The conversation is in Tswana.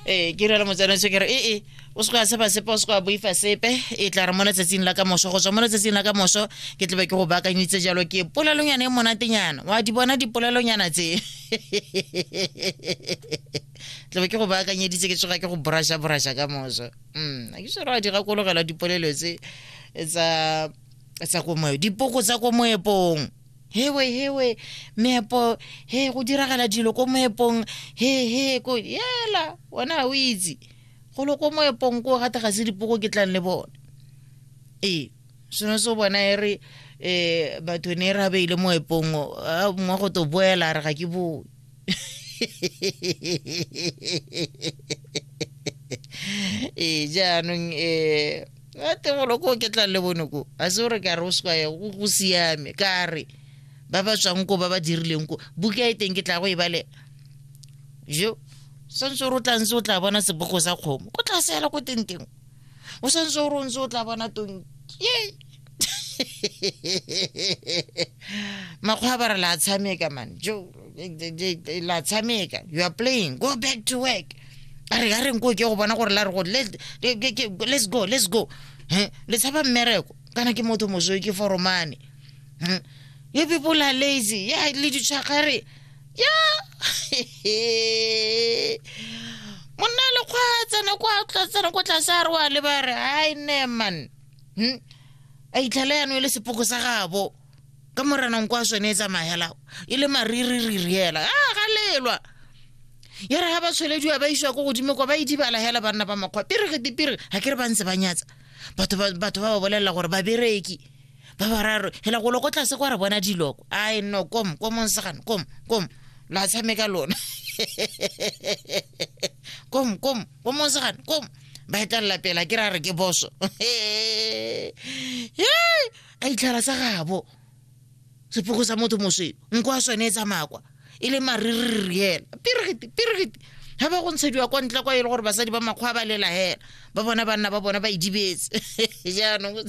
ee ke rela motsana se kere ee eh, eh, o se go ya seba sepe o se go ya boifa sepe e tla re mo letsatsing la ka moso go tswa mo letsatsing la ka moso ke tlebe ke go baakanyitse jalo ke polelonyana e monatenyana wa di bona dipolelonyana tse tlebe ke go baakanyeditse ke tsoga ke go borasha borasha ka moso um ke sere wa di gakologela dipolelo tse tsa komoepo dipoko tsa komoepong hewe hewe meepo he go diragala dilo ko moepong he he ko yela wena o itse golo ko moepong ko gate ga se dipoko ke tlang le bone ee seno se bona e re um batho ne e re a beile moepong mwa go to boela re ga ke boe ee jaanong um a tegolo ko ke tla le bone ko a se gore ka re o se kwaye go siame ka re ba ba tswang ko ba ba dirileng ko buka e teng ke tla go e bale jo santse o re o tla ntse o tla bona sebogo sa kgomo ko tla seela ko tenteng o santse o rontse o tla bona tong makgwa ba re la tshameka man jo la tshameka you are playing go back to work a re a re nko ke go bona gore la re go let- ke- ke- ke- let's go let's go Eh, le tshaba mmereko kana ke motho mosoe ke foromane Hmm. you people are lazy ya le ditshwagare monna le kgwa tsena kwa tsena kwa tlase a re wa le ba re ai ne man hmm? a itlhela yano e le sepoko sa gabo ka moranang kwa sone e tsamagela e le mariririri hela a ah, galelwa ya re ga ba tshwelediwa ba isiwa ko godimo kwa ba idibala hela banna ba makgwa pere ge dipere ga ke re ba ntse ba nyatsa batho ba ba bolelela gore ba bereki ba bararo hela go loko tlase kwa re bona diloko ai no kom kom nsagane kom kom la tshameka lona kom kom kom nsagane kom ba etlelela pela ke ra re ke boso a itlhela sa gabo sepoko sa motho mosweu nko a sone e tsamakwa e le maririri hela pirigiti pirigiti ga ba go ntshediwa kwa ntle kwa e le gore basadi ba makgwa ba lela hela ba bona banna ba bona ba idibetse jaanong